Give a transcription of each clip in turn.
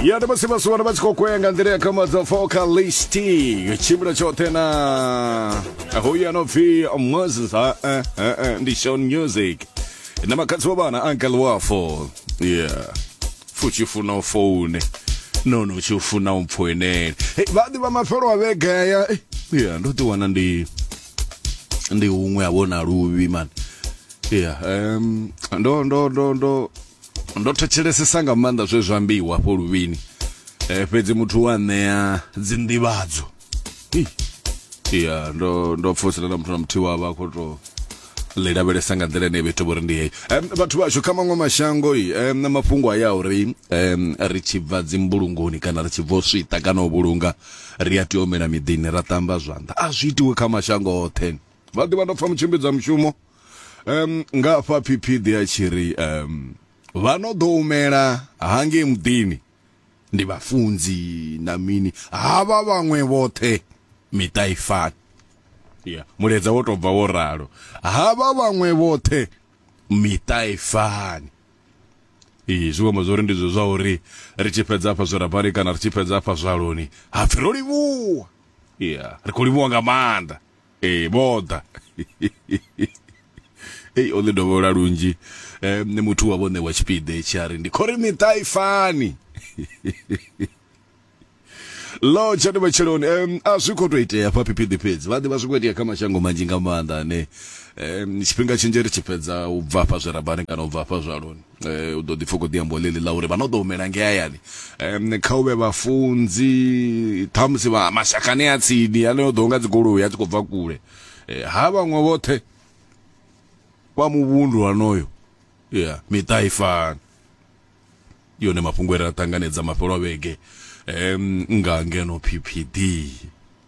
ya ndi musi vhaswa vha tshi khou kwea nga nḓila ya khamadzwa vocalist yo tshimbila tshoṱhe na hoyu ano pfi moses ha eh, eh, eh, ndi shon music na makhadzi wa vhana uncle wafo yeah futshi funa u foune nono utshi funa u mpfoinele hey, vhaḓi vha mafhelo a vhegaya Eh, yeah ndo ḓi wana ndi ndi huṅwe a vhona luvhi man yeah um, ndo ndo ndo ndo ndo thetshelesesa nga maanḓa zwe zwa ambiwa hafho luvhini eh, fhedzi muthu wa ṋea dzinḓivhadzo Hi. ya ndo ndo pfosela na muthu na muthihi wavha a khou tou ḽi lavhelesa nga nḓila ine vha ita vhori ndi heyi Em, vhathu vhashu kha maṅwe mashango i em, na mafhungo a ya uri em, ri tshi bva dzimbulungoni kana ri tshi bva u swita kana u vhulunga ri a tea u humela miḓini ra ṱamba zwanḓa a zwi itiwe kha mashango oṱhe vha ḓivha ndo pfa mutshimbidzwa mushumo um nga fha phiphidi a tshi ri um vha no ḓo umela hangei muḓini ndi vhafunzi na mini havha vhaṅwe vhoṱhe miṱa i fani ya muledza wo tou bva wo ralo havha vhaṅwe vhoṱhe miṱa i fani ee zwi amba zwori ndi zwo zwa uri ri tshi fhedza afha zwirabani kana ri tshi fhedza afha zwaloni hapfi ro livhuwa ya ri khou livhuwa nga maanḓa ee vho ḓa ei o ḽi dovholola lunzhi um nṋe muthu wa vhone wa tshipiḓa etshi a ri ndi khori miṱa i fani lo tshani matsheloni um a zwi khou tou itea fha phiphiḓi fhedzi vha ḓivha zwi khou itea kha mashango manzhi nga maanḓa ane um tshifhinga tshinzhi ri tshi fhedza u bva fha zwirabani kana u bva fha zwaloni eh, u ḓo ḓi pfa khou ḓi amba ḽeḽi ḽa uri vha no ḓo humela nge hayani um kha u vhe vhafunzi ṱhamusi vha mashakani a tsini ane o ḓo nga dzigoloi a tshi khou bva kule eh, ha vhaṅwe vhoṱhe vha muvhundu hanoyo ya miṱa i fana yone mafhungo ere a ṱanganedza mafhelo a vhege um nga ngeno ppd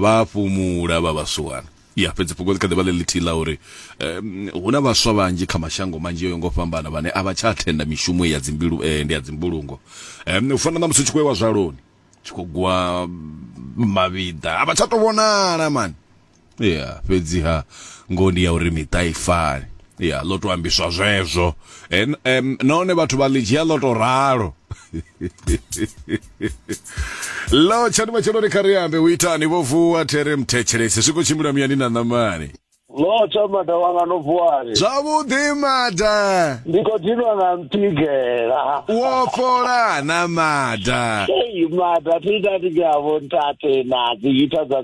vha fhumula vha vhasuwana ya fhedzi fhungo ḽi kha ḓi vha ḽe ḽithihi ḽa uri um hu na vhaswa vhanzhi kha mashango manzhi o yo ngo fhambana vhane a vha tsha thenda mishumo ya dzimbilu eh, ndi ya dzimbulungo um u fana na musi u tshi khou ewa zwaloni tshi khou gwa mavhiḓa a vha tsha tou vhonala mani ya fhedziha ngoho ndi ya uri miṱa i fani ya ḽo to ambiswa zwezwo and um, nahone vhathu vha ḽi dzhia ḽo to ralo lo tshani matshelo ri kha ri ambe u itani vho vuwa there mthetshelesi zwi khou tshimbila muyani na ṋamani lo tsha mada wanga no vuwani zwavhuḓi mada ndi khou dinwa nga mpigela wo fhola na mada Hey, mada thi ita ndi ngavho ntate na dzi ita dza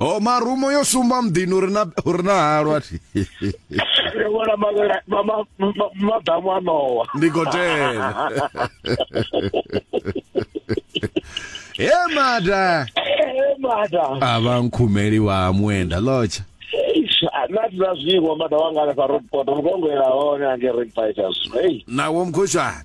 Oh, marumo yo sumba muḓini uri na uri na halwa thi. Ri vhona mavhela ma- ma- ma- maḓamu a ṋowa Ndi gotela. He mada. Eh, mada A vha nkhumeli wa muenda lotsha. Eish, a- na thi na zwiṅwe mada wanga hanefha road port mukongoela hone ange ring fighters ei Nawo mkhoshani.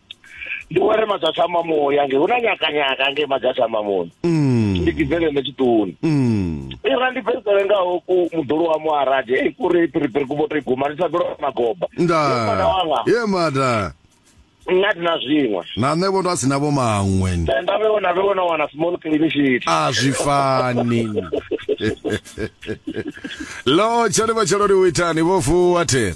ndi were madzatha mamoya nge hu na nyakanyaka nge madzatha mamoni mm. ndi kibvele ne tshiṱoni mm. ira ndi bvesele ngaho ku muḓulu wa muaradi ei kuri piripiri ku voto iguma ndi thabelo magoba nda wanga ye mada nna tina zwiṅwe na nṋe vho ndo a si navho maṅwe nda vhe wona vhe wona wana small cliniciet a zwi fani lo tshone vha tshelo ri u itani vho fuwa thera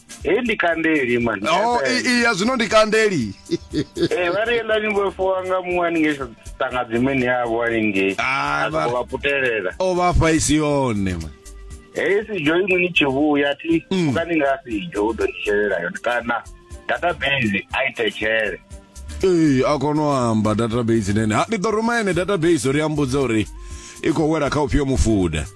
Hei ndi kandeli man. Oh, i- i- ya zwino ndi kandeli Eh vha ri yelani vho fowa nga muṅwe haningei tanga dzimeni yavho haningei. Ah, A vha- vha putelela. o vha fha isi yone man. Hei si jo iṅwe ni tshi vhuya thi Mm. uka ni nga si jo u ḓo ni shelela yone kana database a i thetshele. ee a kona u amba database nene ha ndi ḓo ruma ene database uri ambudze uri i khou wela kha ufhio mufuda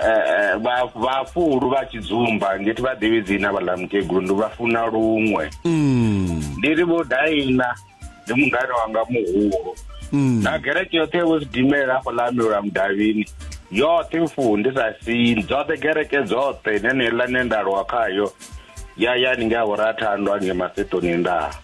eh, eh, vha- vhafulu vha tshidzumba ngeti vha ḓivhi dzina vhaḽa mukegulu ndi vha funa luṅwe Mm. ndi ri vho daina ndi mungane wanga muhulu Mm. na gereke yoṱhe vho sidimela hafho ḽa amilula mudavhini yoṱhe mfuni ndi sa sini dzoṱhe gereke dzoṱhe neneiḽa ne nda lwa khayo ya ya ni nga vhorathandwa nge masetoni ndaa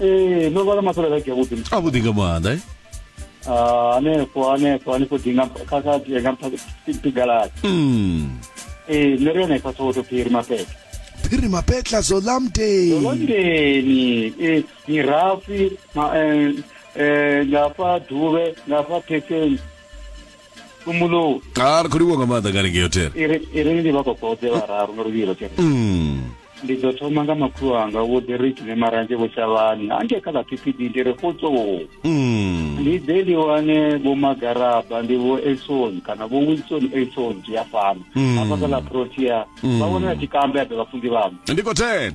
ee ndo vhala masole like yavhuḓi a vhuḓi nga maanḓa eh? ah, hanefho hanefho hanefho dinga kha kha dinga pigalati mm eh nṋe ri yone kha soto phiri mapetla phiri mapetla zolamdeni zolamdeni eh mirafi ma eh, eh ngafha duvhe ngafha phetheni kumbulo ha ri khou livhuwa nga maanḓa ngani ngeyo thera iri iri ndi vha kokodze vhararu nga luvhilo tshena Mm. ndi ḓo thoma nga makhulu anga vho derek ne maranzhe vho shavhani ange kha ḽa ppd ndi re fotsoo Mm. ndi ḓe ndi wane vho magaraba ndi vho elson kana vho wilson elson zwi a fana Mm. hafha kha ḽa protea vha vhona na tshikambe a ḓe vhafunzi vhamu ndi khou thena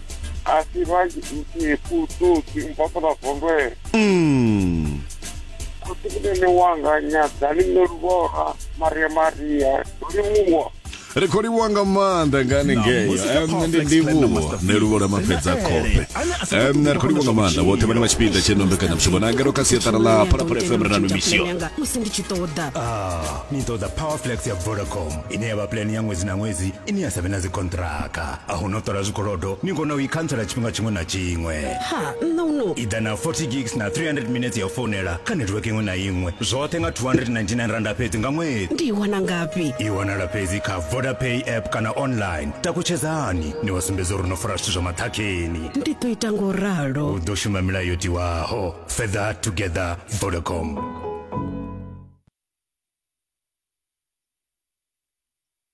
Asi ba nti ku tu ti mpa sa ba vondwe. Mm. Ku ti ne ne wanga nya dali ne lubora Maria Maria. Dori muwa. ri khou livhuwa nga maanḓa nga haningei ndi ndivhuwo nṋe luvho lwa mafhedza khofhe ri khou livhuwa nga maanḓa vhoṱhe vhane vha tshipiḓa tsheno mbekanyamushumo na ngeno kha siaṱara ḽa phalaphala fm ri na mimisio musi ndi tshi ṱoḓa ah, ni ṱoḓa powerflex ya vodacom ine ya vha plan ya ṅwedzi na ṅwedzi ine ya sa vhe na dzikontraka a hu no ṱola zwikolodo ni kona u i khantsela tshifhinga tshiṅwe na tshiṅwe ha nṋa u no i ḓa na 40 gigs na 300 minutes ya u founela kha network iṅwe na iṅwe zwoṱhe nga 299 randa fhedzi nga ṅwedzi ndi i wana ngafhi i wanala fhedzi kha vodapay app kana online takutshedzani ni wa sumbedza uri no fara zwithu zwa maṱhakheni ndi ḓo ita ngo ralo u ḓo shuma milayo yo tiwaho further together vodacom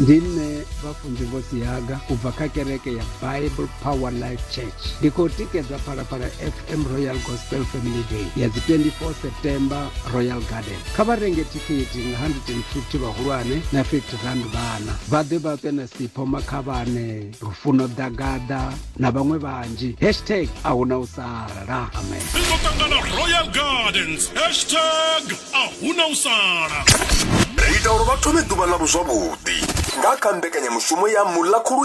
ndi nṋe vhafunzi vho siaga u bva kha kereke ya bible power life church ndi khou tikedza phalaphala fm royal gospel family day ya dzi 24 september royal garden kha vha renge thikhithi nga 150 vhahulwane na 50 rand vhana vha ḓe vha ṱwe na sipho makhavhane lufuno ḓagaḓa na vhaṅwe vhanzhi hashtag a hu na u sala amen ringo tangana royal gardens hashtag ahuna u sala ri ita uri vha thome ḓuvha ḽavho zwavhuḓi nga kha mbekanyamushumo ya muḽa khulu